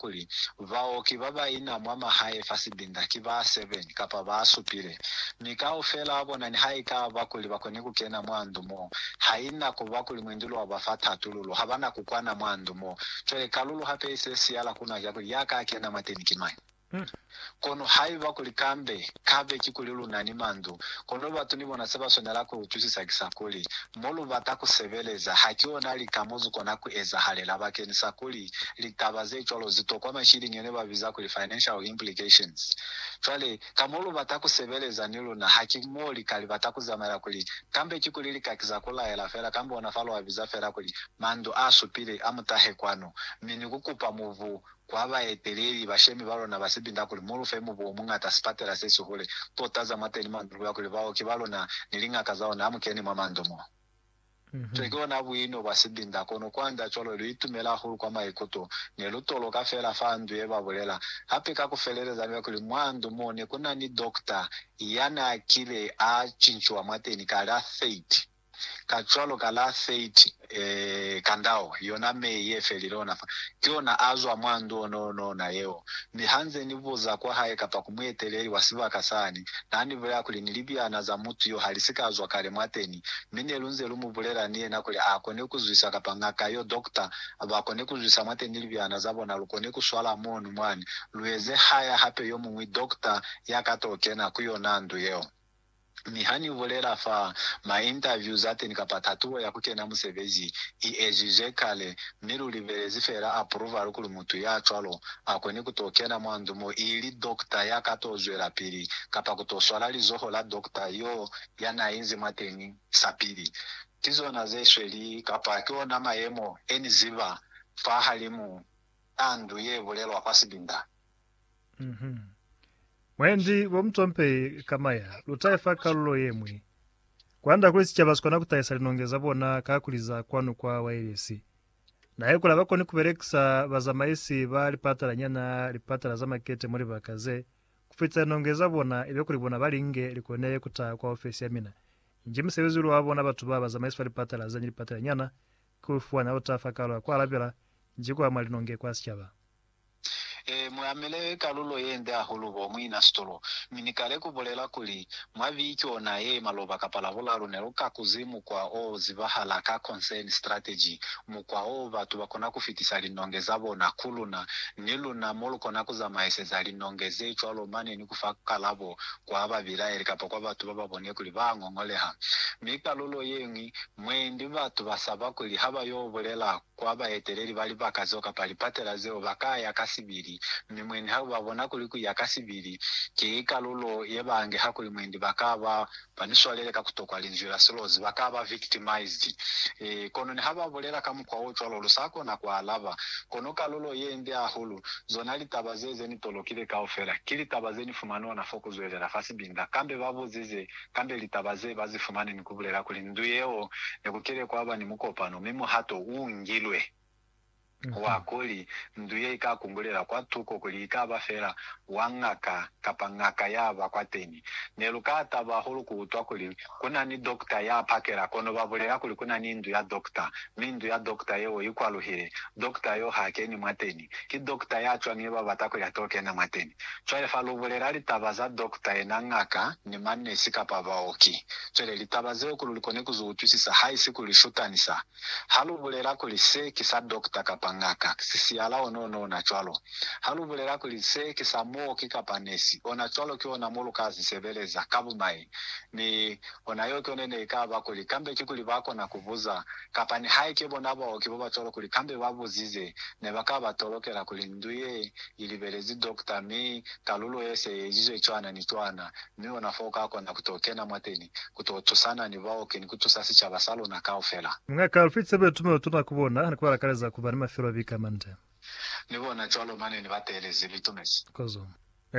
kuli, Baoki ba ba ina mwa mahae fa sibinda ki ba seven kapa ba supile, mi kaufela wa bona niha i ka ba kuli ba koni ku kena mwa ndu mo, ha i na ku ba kuli mwenduli wa ba fa tatululo, ha ba na ku kwana mwa ndu mo. Cwale, kalulu hape i se siyala ku na ki ya kuli, Ya ka kena mwateni ki mañi? Kono haiba kuli kambe kabe kikuli lu na ni mandu, kono batu ni bona se ba swanela ku utwisisa ki sa kuli, mo lu bata ku sebeleza ha ki ona lika mo zu kona ku ezahalela bakenisa kuli litaba ze cwalo zi tokwa mashilingi ne ba biza kuli financial implications. Cwale, ka mo lu bata ku sebeleza ni luna ha ki mo li ka li bata ku zamaela kuli kambe kikuli li ka kiza ku laela fela kambe ona fa lu a biza fela kuli mandu a supile a mutahe kwanu mi ni ku kupa mubu kwa baeteleli bashemi ba lona ba sibinda kuli, Mu lu fe mubu o muñata, sipatela se sihule, tota za mwa teni mwa ndu ya kuli baoki ba luna ni liñaka za ona ha mu keni mwa mandu mo. Cwale ki ona buino bwa sibinda, kono kwanda cwalo lu itumela hahulu kwa maikuto. Ne lu toloka feela fa ndu ye, ba bulela. Hape ka ku feleleza ni kuli mwa ndu mo ne ku na ni dokta ya n'a kile a cinciwa mwateni kale, a 30. Kacwalo ka la 30 Kandao, yona Mei ye felile ona fa, ki ona a zwa mwa ndu ona ona ona yeo. Mi ha nze ni buza kwa hae kapa ku mueteleli wa sibaka sani, na ni bulela kuli ni libyana za mutu yo ha li si ka zwa kale mwateni, mi ne lu nze lu mu bulela ni yena kuli a kone ku zwisa kapa ngaka yo, doctor, ba kone ku zwisa mwateni ni libyana za bona, lu kone ku swala mono mwani, lu eze haya hape yomuñwi doctor ya ka to kena ku yona ndu yeo. Mi ha ni bulela fa ma interviews a teni kapa tatuo ya ku kena musebezi i ezizwe kale, mi lu libelezi fela approval kuli mutu ya cwalo a kone ku to kena mwa ndu mo ili doctor ya ka to zwelapili kapa ku to swala lizoho la doctor yo ya na inzi mwateni sapili. Ki zona ze sweli kapa ki ona mayemo e ni ziba fahalimu a ndu ye bulelwa kwa sibinda. Mhm. Mwendi bo mucompei ka maya, lu tahe fa kalulo ye mwi. Kwanda kuli sicaba sikona ku tahisa linonge za bona ka kuli za kwanu kwa wailesi. Nahe kuli abakoni ku belekisa bazamaisi ba lipatala nyana, lipatala za makete mwa libaka ze, ku fitisa linonge za bona ibe kuli bona ba li nge, li kone ku taha kwa ofesi ya mina. Nji musebezi ulu wa bona batu ba bazamaisi fa lipatala ze ni lipatala nyana, ki u fuana lu taha fa kalulo ya ku alabela, nji ku ama linonge kwa sicaba. Ee, mu amile kalulo ye nde hahulu bo muina sitolo. Mi Ni kale ku bulela kuli, mwa biki ona ye, maloba kapa Labulalu, ne lu ka kuzi mukwa o zibahala ka concern strategy, mukwa o batu ba kona ku fitisa linonge za bona ku luna, ni luna mo lu kona ku zamaiseza linonge ze cwalo mane ni ku fa kalabo kwa babilaeli kapa kwa batu ba ba bone kuli ba ngongoleha. Mi kalulo ye ñwi, mwendi batu ba saba kuli ha ba yo bulela ku kwa baeteleli ba libaka zeo kapa lipatela zeo, ba ka ya ka sibili, mi mwendi ha ba bona kuli ku ya ka sibili ki kalulo ye ba nge hakuli mwendi, ba ka ba ba ni swalele ka ku tokwa linzwi la silozi, ba ka ba victimized. E, kono ni ha ba bulela ka mukwa o cwalo, lu sa kona ku alaba. Kono kalulo ye nde hahulu, zona litaba ze, ze ni tolokile kaufela, ki litaba ze ni fumani ona fo ku zwelela fa sibinda. Kambe ba buzize, kambe litaba ze ba zi fumani ni ku bulela kuli ndu yeo ne ku kile kwa ba ni mukopano mi muhato u ngilwe wa kuli ndu ye i ka kungulela kwa tuko kuli i ka ba fela wa ngaka kapa ngaka ya ba kwateni. Ne lu ka taba hahulu ku utwa kuli ku na ni dokta ya pakela kono ba bulela kuli ku na ni ndu ya dokta mi ndu ya dokta yeo i kwaluhile, dokta yo ha keni mwateni. ki dokta ya cwani ye ba bata ku ya to kena mwateni? Cwale fa lu bulela litaba za dokta yena, ngaka, ni manesi kapa baoki. Cwale litaba zeo kuli lu kone ku zu utwisisa, haisi ku li shutanisa. Ha lu bulela kuli se ki sa dokta kapa ngaka, sisiala one one ona cwalo. Ha lu bulela kuli se ki sa muoki kapa nesi, ona cwalo ki ona mo lu ka zi sebeleza, ka bumai. Mi, ona yeo ki yone ne i ka ba kuli, kambe ki kuli ba kona ku buza, kapa nihaike bona baoki babacwalo kuli kambe ba buzize, ne ba ka ba tolokela kuli ndu ye i libelezi dokta mi talulo ye se i ezizwe cwana ni cwana, mi ona fo ka kona ku to kena mwateni ku to tusana ni baoki ni ku tusa sicaba sa luna kaufela. Mungaka Alfred Sebe Itume utuna ku bona ni ku ba lakaleza ku ba ni mafelo a bika mande. Ni bona cwalo mane ni ba teelezi, Litumezi. Kozo.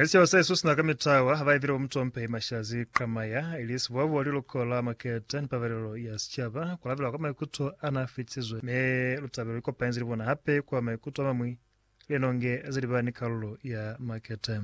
Seo sa isusuna ka mitawa ha ba ipile bo mutompehi Mashazi Qamaya, ili sibobo wa liluko la maketa ni pabalelo ya sicaba, ku lapela kwa maikuto a na fitisizwe. Mi Lutabelo li kopanyize ni bona hape kwa maikuto a mamwi, linonge ze li ba ni kalulo ya maketa.